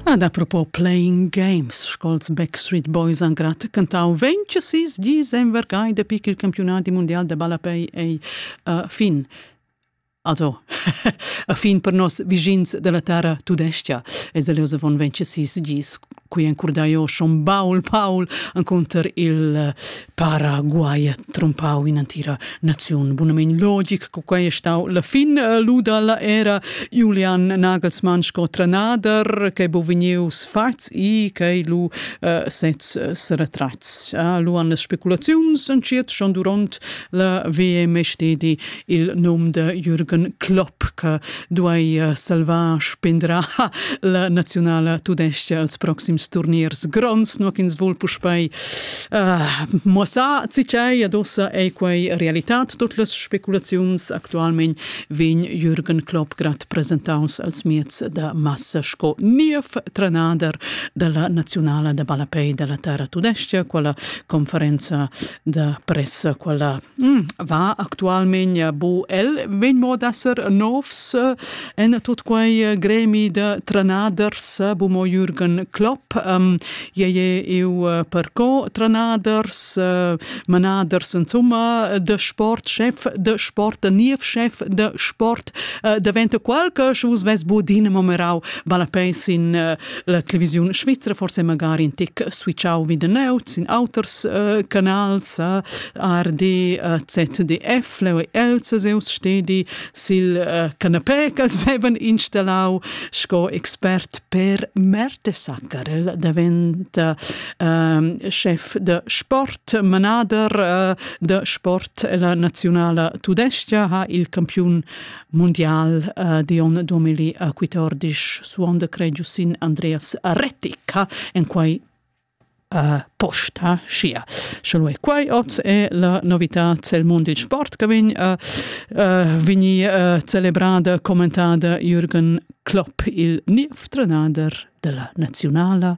Ad apropos playing games sco'ls Backstreet Boys han grat cantau 26 dis envergai dapi ch'il campiunadi mundial da ballapei ei uh, fin. Also, a fin per nos vischins dalla terra tudescha es el oz avon 26 dis qui encurda io schon Paul Paul encunter il Paraguay trompau in antira naziun. Bunamein logic, co quei è stau la fin eh, luda la era Julian Nagelsmann sco tranader, che bo vegnius fats i che lu uh, sez uh, se retrats. Uh, lu han speculaziuns en chiet schon durant la VMST di il num de Jürgen Klopp che duei eh, salvar spendra la nazionala tudesca als proxims turniers gronds no ch'ins vul puspei uh, mossar cicei ad ossa ei quei realitat tut las speculaziuns actualment vegn Jürgen Klopp grad presentaus als miez da massa sco niev trenader della nazionala da ballapei della terra tudesca quella conferenza da pressa quella mm, va actualmente bu el vegn mo d'esser novs en tot quei gremi de tranaders bu mo Jürgen Klopp um, je je eu per co tranaders uh, manaders insomma de sport chef de sport de niev chef de sport uh, diventa qualche vos ves bu din momerau vale pens in uh, La televisiun svizra forse magari in tic switchau wie den Neut sin auters uh, canals uh, RD uh, ZDF leu Els seus stedi sil uh, canapé ch'els vevan installau sco expert per Mertesacker davent uh, chef de sport manader uh, de sport la nazionala tudescha ha il campiun mundial uh, Dion 2014 suonda cregiu sin Andreas Rettica en quai uh, posta sia. Selo e quai oz è la novità cel mondo il sport che vin uh, uh, vini uh, celebrada, commentata Jürgen Klopp il niev trenader della nazionala